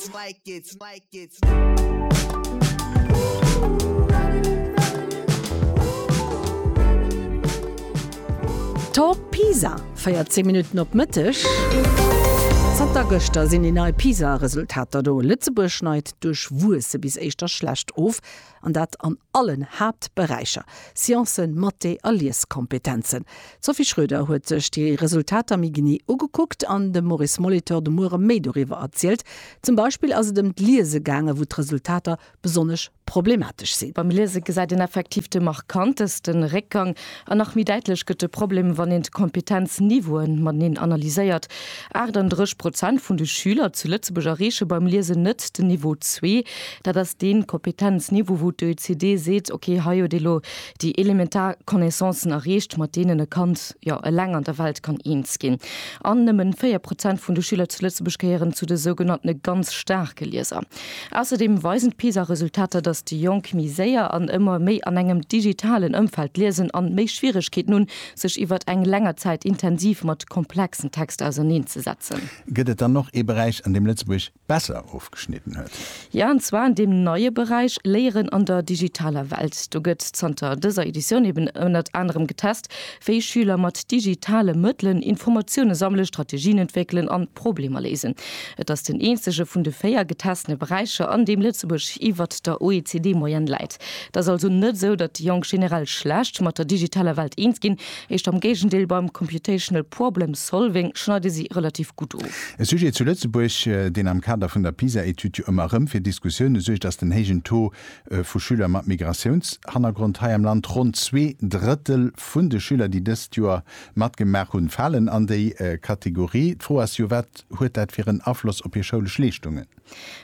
it's like it's like it's Talk Pisa feiert 10 Minuten op Mëtteg. Zanter gëschter sinn déi nei PISA-Resultater do. Lëtzebuerg schneit duerch Wuesse bis éischter schlecht of. An dat an allen Haaptberäicher, Sciencen, Mathé a Lieskompetenzen. D'Sophie Schroeder huet sech déi Resultater méi genee ugekuckt an dem Maurice Molitor de Muere méi doriwwer erzielt. Zum Beispill ass et ëm d'Liese gaangen, wou d'Resultater besonnesch problematesch sinn. Beim Liese gesäit een effektiv de markantesten Réckgang. An nach méi däitlech gëtt de Problem, wann een d'Kompetenzniveauen mateneen analyséiert. 38 Prozent vun de Schüler zu Lëtzebuerg erreeche beim Liesen net den Niveau zwee. Dat ass dee Kompetenzniveau, wou d'OECD seet, ok, hei huet ee lo déi elementar Connaissancen erreecht, mat deenen e Kand jo eleng an der Welt kann eens ginn. An nëmmen 4 Prozent vun de Schüler zu Lëtzebuerg gehéieren zu de sougenanntene ganz staarke Lieser. Ausserdeem weisen d'PISA-Resultater, datt déi Jonk méi séier an ëmmer méi an engem digitalen Ëmfeld liesen an méi Schwieregkeeten hunn, sech iwwert eng länger Zäit intensiv mat komplexen Texter auserneen ze setzen. Gëtt et dann och ee Beräich, an deem Lëtzebuerg besser ofgeschnidden huet? Jo, an zwar an deem neie Beräich Léieren an der digitaler Welt. Do gëtt zanter dëser Editioun eben ënnert anerem getest, wéi Schüler mat digitale Mëttelen Informatioune sammelen, Strategien entwéckelen an Problemer léisen. Et ass den eenzege vun de véier getestene Beräicher, an deem Lëtzebuerg iwwert der OECD-Moyenne läit. Et ass also net esou, datt déi Jonk generell schlecht mat der digitaler Welt eens ginn, eischt am Géigendeel, Beim Computational Problem Solving schneide si relativ gutt of. E Sujet zu Lëtzebuerg, deen am Kader vun der PISA-Etüd jo ëmmer erëm fir Diskussioune suergt, ass den héijen Taux Vu Schüler mat Migratiounshannergrond hei am Land. Ronn zwee Drëttel vun de Schüler, déi dëst Joer matgemaach hunn, falen an déi Kategorie. D'Fro ass jo, wat huet dat fir en Afloss op hir schoulesch Leeschtungen?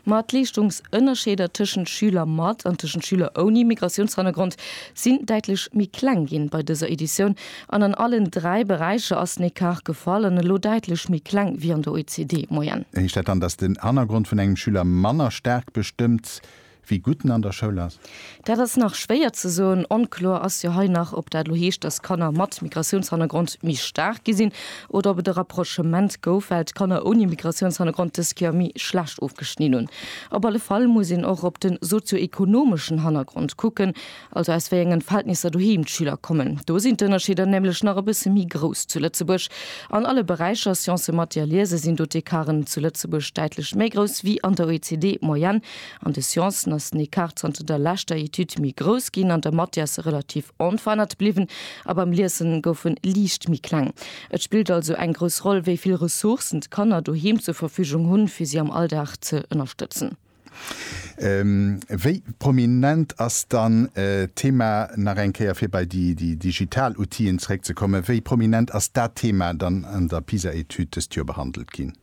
Ma d'Leeschtungsënnerscheeder tëschent Schüler mat an tëschent Schüler ouni Migratiounshannergrond sinn däitlech méi kleng ginn bei dëser Editioun. An an allen dräi Beräicher ass den Ecart gefall an elo däitlech méi kleng wéi an der OECD-Moyenne. Heescht dat dann, dass den Hannergrond vun engem Schüler manner staark bestëmmt, Wie gutt en an der Schoul ass? Dat ass nach schwéier ze soen. Onkloer ass jo hei nach, ob dat elo heescht, dass Kanner mat Migratiounshannergrond méi staark gi sinn oder ob et e Rapprochement gouf, well d'Kanner ouni Migratiounshannergrond dës Kéier méi schlecht ofgeschnidn hunn. Op alle Fall muss een och op de sozio-ekonomeschen Hannergrond kucken, also aus wéi engen Verhältnisser doheem d'Schüler kommen, do sinn d'Ënnerscheeder nämlech nach e bësse méi grouss zu Lëtzebuerg. An alle Beräicher, Sciencen, Mathé a Liese, sinn do d'Ecarten zu Lëtzebuerg däitlech méi grouss wéi an der OECD-Moyenne. An de Sciencen ass den Ecart zanter der leschter Etüd méi grouss ginn, an der Mathé ass e relativ onverännert bliwwen a beim Liesen gouf e liicht méi kleng. Et spillt also eng grouss Roll, wéi vill Ressourcen d'Kanner doheem zur Verfügung hunn, fir si am Alldag ze ënnerstëtzen. Wéi prominent ass dann d'Thema, nach eng Kéier fir bei déi digital Outill'en zeréckzekommen, wéi prominent ass dat Thema dann an der PISA-Etüd dëst Joer behandelt ginn?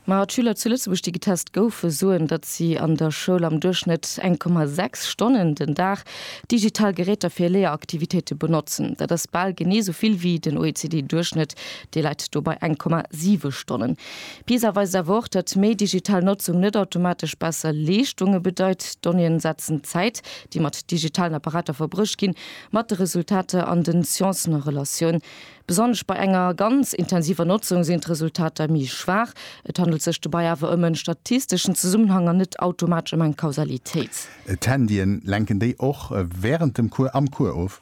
Ma d'Schüler zu Lëtzebuerg, déi getest goufen, soen, datt si an der Schoul am Duerchschnëtt eng Komma sechs Stonnen den Dag digital Geräter fir Léieraktivitéite benotzen. Dat ass bal genee esou vill wéi den OECD-Duerchschnëtt, dee läit do bei eng Komma siwe Stonnen. PISA weist awer och, datt méi digital Notzung net automatesch besser Leeschtunge bedeit. D'Donnéeën setzen d'Zäit, déi mat digitalen Apparater verbruecht ginn, mat de Resultater an den Sciencen a Relatioun. Besonnesch bei enger ganz intensiver Notzung sinn d'Resultater méi schwaach. Et handelt sech dobäi awer ëm en statisteschen Zesummenhang an net automatesch ëm eng Kausalitéit. D'Handyen, lenken déi och wärend dem Cours am Cours of?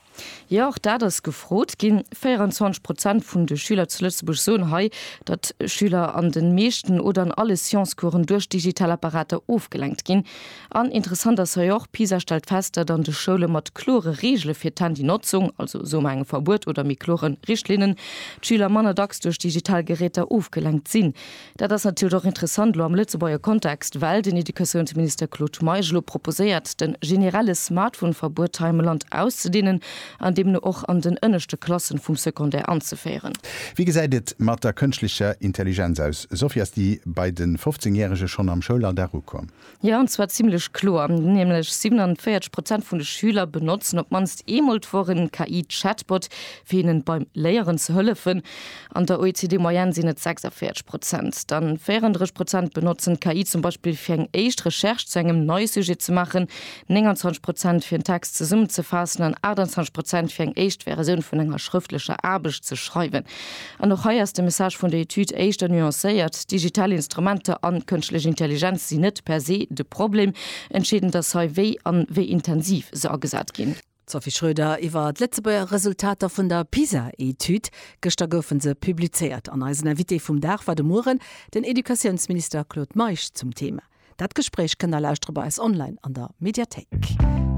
Jo, och dat ass gefrot ginn. 24 Prozent vun de Schüler zu Lëtzebuerg soen hei, datt Schüler an de meeschten oder an alle Science-Coursen duerch digital Apparater ofgelenkt ginn. An interessant ass hei och, PISA stellt fest, datt an de Schoule mat klore Reegele fir d'Handynotzung, also soe mer engem Verbuet oder méi klore Richtlinnen, d'Schüler manner dacks duerch digital Geräter ofgelenkt sinn. Dat ass natierlech och interessant elo am Lëtzebuerger Kontext, well den Educatiounsminister Claude Meisch elo proposéiert, de generelle Smartphone-Verbuet hei am Land auszedeenen an deemno och an den ënneschte Klassen vum Secondaire anzeféieren. Wéi gesäit et mat der kënschtlecher Intelligenz aus? Sophie, ass déi bei de 15 Järege schonn am Schoulalldag ukomm? Jo, an zwar zimmlech kloer, nämlech 47 Prozent vun de Schüler benotzen op d'mannst eemol d'Woch e KI-Chatbot, fir hinnen beim Léieren ze hëllefen. An der OECD-Moyenne sinn et 46 Prozent. Dann 34 Prozent benotzen d'KI zum Beispill, fir eng éischt Recherche zu engem neie Sujet ze maachen, 29 Prozent, fir en Text zesummenzefaassen an 28 Prozent, fir eng éischt Versioun vun enger schrëftlecher Aarbecht ze schreiwen. An och hei ass de Message vun der Etüd éischter nuancéiert, Digital Instrumenter an kënschtlech Intelligenz sinn net per se de Problem, entscheedend ass hei wéi an wéi intensiv se agesat ginn. D'Sophie Schröder iwwer d'Lëtzebuerger Resultater vun der PISA-Etüd. Gëschter goufe se publizéiert an eisen Invité vum Dag war de Mueren den Educatiounsminister Claude Meisch. Zum Thema dat Gespréich kënnt der lauschtere bei eis online an der Mediathéik.